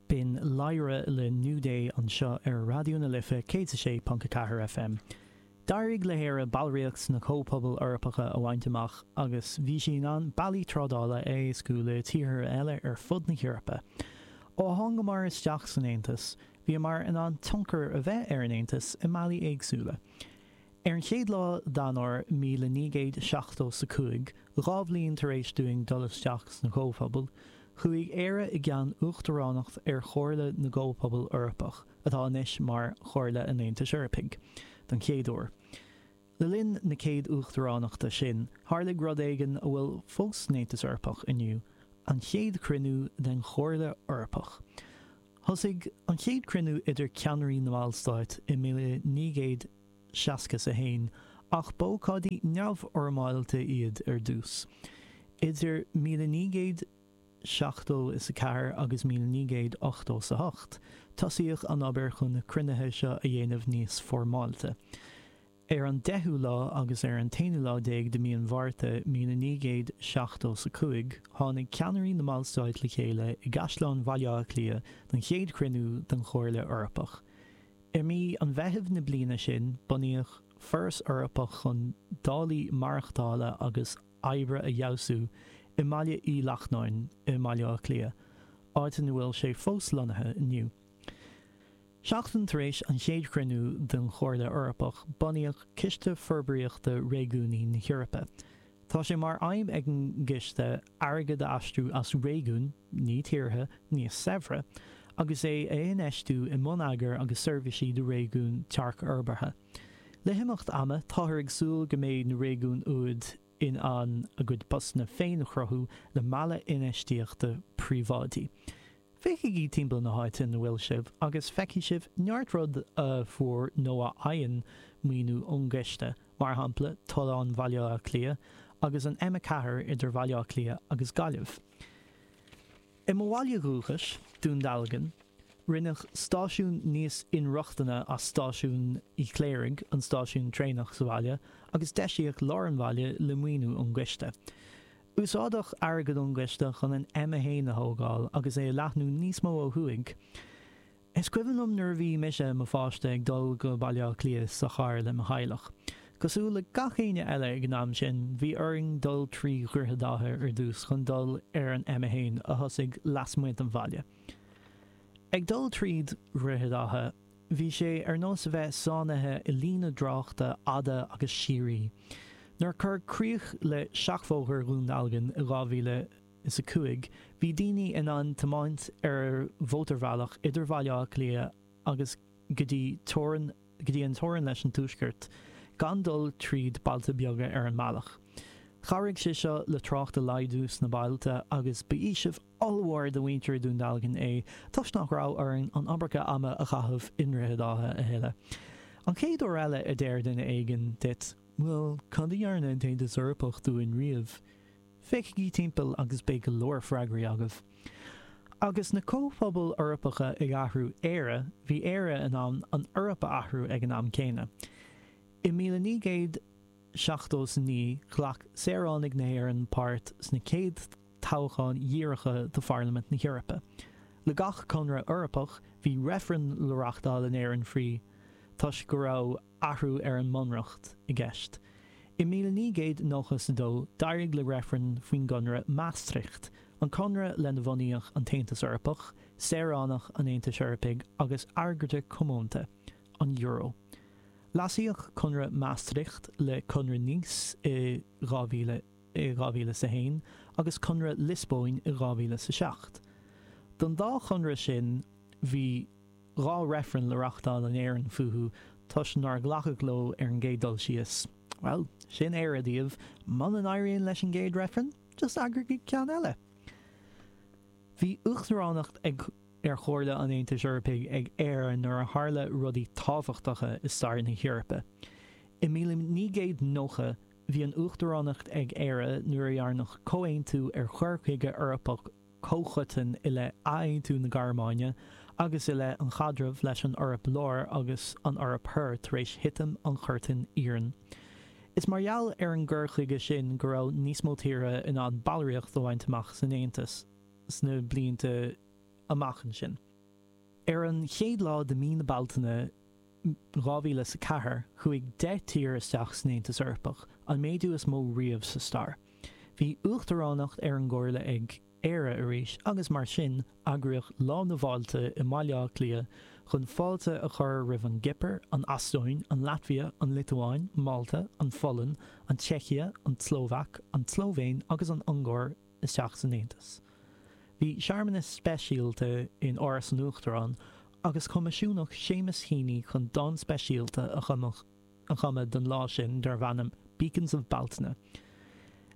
B'in Léire le New Day anseo ar Raidió na Life 106.4 FM. D'éirigh le hÉire ballraíocht sna Comhphobail Eorpacha a bhaint amach agus bhí sí in ann bealaí trádála a éascú le tíortha eile ar fud na hEorpa. Ó thángamar isteach san Aontas, bhíomar in ann tionchar a bheith ar an Aontas i mbealaí éagsúla. Ar an chéad lá d'Eanáir míle naoi gcéad seachtó is a cúig, dhá bhliain tar éis dúinn dul isteach sna Comhphobail, chuaigh Éire i gceann Uachtaránacht ar Chomhairle na gComhphobal Eorpach, atá anois mar Chomhairle an Aontais Eorpaigh, don chéad uair. Le linn na céad Uachtaránachta sin, tharlaigh rud éigin a bhfuil fós san Aontas Eorpach inniu, an chéad chruinniú den Chomhairle Eorpach. Thosaigh an chéad chruinniú idir ceannairí na mballstáit i míle naoi gcéad. seasca is a haon. Ach b'ócáidí neamhfhoirmeálta iad ar dtús. Idir míle naoi gcéad seachtó is a ceathair agus míle naoi gcéad ochtó is a hocht, tosaíodh an obair chun na cruinnithe seo a dhéanamh níos foirmeálta. Ar an deichiú lá agus ar an t-aonú lá déag de mí an Mhárta míle naoi gcéad seachtó is a cúig, tháinig ceannairí na mballstáit le chéile i gCaisleán Bhaile Átha Cliath don chéad chruinniú den Chomhairle Eorpach. I mí an Mheithimh na bliana sin bunaíodh an Foras Eorpach chun dálaí maireachtála agus oibre a fheabhsú i mBaile Uí Lachnáin i mBaile Átha Cliath, áit ina bhfuil sé fós lonnaithe inniu. Seachtain tar éis an chéad chruinniú den Chomhairle Eorpach bunaíodh Ciste Forbraíochta Réigiúnaí na hEorpa, Tá sé mar aidhm ag an gCiste airgead a aistriú as réigiúin, ní tíortha, níos saibhre, agus é a infheistiú i mbonneagar agus seirbhísí do réigiúin tearcfhorbartha. Le himeacht ama, táthar ag súil go mbeidh na réigiúin úd in ann a gcuid postanna féin a chruthú le mealladh infheistíochta príobháidí. Féachaigí timpeall na háite ina bhfuil sibh agus feicfidh sibh neart rud a fuair nó a fhaigheann maoiniú ón gCiste mar shampla Tollán Bhaile Átha Cliath agus an M4 idir Bhaile Átha Cliath agus Gaillimh. I mo bhaile dhúchais, Dún Dealgan, rinneadh stáisiún níos inrochtana as stáisiún Uí Chléirigh, an stáisiún traenach sa bhaile, agus deisíodh lár an bhaile le maoiniú ón gCiste. Úsáideadh airgead ón gCiste chun an M1 a thógáil agus é a leathnú níos mó ó thuaidh. Is cuimhin liom nuair a bhí mise i mo pháiste, ag dul go Baile Átha Cliath sa charr le mo theaghlach. Cosúil le gach éinne eile ag an am sin, bhí orainn dul trí Dhroichead Átha ar dtús chun dul ar an M1 a thosaigh lasmuigh den bhaile. Ag dul trí Dhroichead Átha, bhí sé ar nós a bheith sáinnithe i líne tráchta fhada agus síoraí. Nuair a cuireadh críoch le Seachbhóthar Dhún Dealgan i 2000, is a cúig, bhí daoine in ann tiomáint ar mhótarbhealach idir Bhaile Átha Cliath agus go dtí an teorann leis an Tuaisceart gan dul tríd bailte beaga ar an mbealach. Chabhraigh sé seo le trácht a laghdú sna bailte agus ba fhaoiseamh ollmhór do mhuintir Dhún Dealgan é toisc nach raibh orainn an iomarca ama a chaitheamh i nDroichead Átha a thuilleadh. An chéad uair eile a deir duine éigin duit, Bhuel, cad a dhearna an tAontas Eorpach dúinn riamh? Féachaigí timpeall agus beidh go leor freagraí agaibh. Agus na comhphobail Eorpacha ag athrú Éire, bhí Éire in ann an Eoraip a athrú ag an am céanna. I míle naoi gcéad seachtó is a naoi, ghlac saoránaigh na hÉireann páirt sna chéad toghcháin dhíreacha do Pharlaimint na hEorpa. Le gach conradh Eorpach, bhí reifreann le reachtáil in Éirinn faoi, toisc go raibh. athrú ar an mBunreacht i gceist. I míle naoi gcéad nócha is a dó, d'éirigh le reifreann faoin gConradh Maastricht, an conradh lena bhunaíodh an tAontas Eorpach, saoránach an Aontais Eorpaigh agus airgeadra comónta, an Euro. Leasaíodh Conradh Maastricht le Conradh Nice i dhá mhíle, i 2001 agus Conradh Liospóin i 2007. Don dá chonradh sin bhí. dhá reifreann le reachtáil in Éirinn fúthu toisc nár glacadh leo ar an gcéad dul síos. Bhuel, sin Éire daoibh, muna n-éiríonn leis an gcéad reifreann, just eagraigí ceann eile! Bhí uachtaránacht ar Chomhairle an Aontais Eorpaigh ag Éire nuair a tharla rudaí tábhachtacha i stair na hEorpa. I míle naoi gcéad nócha, bhí an uachtaránacht ag Éire nuair a dhearnadh comhaontú ar chur chuige Eorpach, comhchoiteann i leith athaontú na Gearmáine agus i leith an chaidrimh leis an Eoraip Láir agus an Eoraip Thoir tar éis thitim an Chuirtín Iarainn. Is mar gheall ar an gcur chuige sin go raibh níos mó tíortha in ann ballraíocht a bhaint amach san Aontas sna blianta amach ansin. Ar an chéad lá de mí na Bealtaine 2004, chuaigh 10 tír isteach san Aontas Eorpach, an méadú is mó riamh sa stair. Bhí uachtaránacht ar an gComhairle ag Éire arís agus mar sin, eagraíodh Lá na bhFáiltí i mBaile Átha Cliath chun fáilte a chur roimh an gCipir, an Eastóin, an Laitvia, an Liotuáin, Málta, an Pholainn, an tSeicia, an tSlóvaic, an tSlóivéin agus an Ungáir isteach san Aontas. Bhí searmanas speisialta in Áras an Uachtaráin agus coimisiúnaíodh Seamus Heaney chun dán speisialta a chumadh don lá sin darbh ainm 'Beacons at Bealtaine'.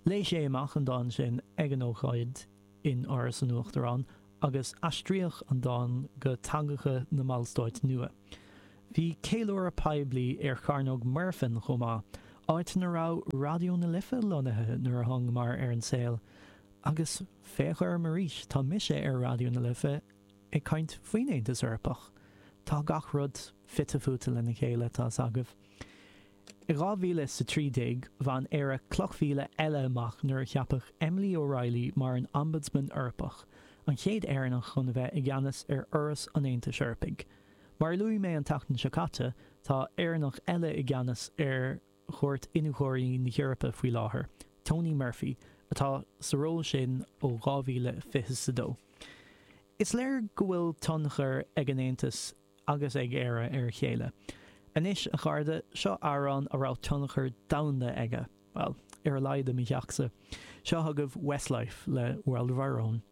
Léigh sé amach an dán sin ag an ócáid in Áras an Uachtaráin agus aistríodh an dán go teangacha na mballstáit nua. Bhí ceiliúradh poiblí ar Chearnóg Muirfean chomh maith, áit a raibh Raidió na Life lonnaithe nuair a thángamar ar an saol. Agus féach orm arís, tá mise ar Raidió na Life ag caint faoin Aontas Eorpach. Tá gach rud fite fuaite lena chéile, tá's agaibh. I dhá mhíle is a trí déag, bhain Éire cloch mhíle eile amach nuair a ceapadh Emily O'Reilly mar an Ombudsman Eorpach, an chéad Éireannach chun a bheith i gceannas ar fhoras an Aontais Eorpaigh. Mar a luaigh mé an tseachtain seo caite, tá Éireannach eile i gceannas ar Chúirt Iniúchóirí na hEorpa faoi láthair, Tony Murphy, atá sa ról sin ó 2022. Is léir go bhfuil tionchar ag an Aontas agus ag Éire ar a chéile. Anois, a chairde, seo amhrán a raibh tionchar domhanda aige, bhuel, ar a laghad i mo theachsa. Seo agaibh Westlife le World of Our Own.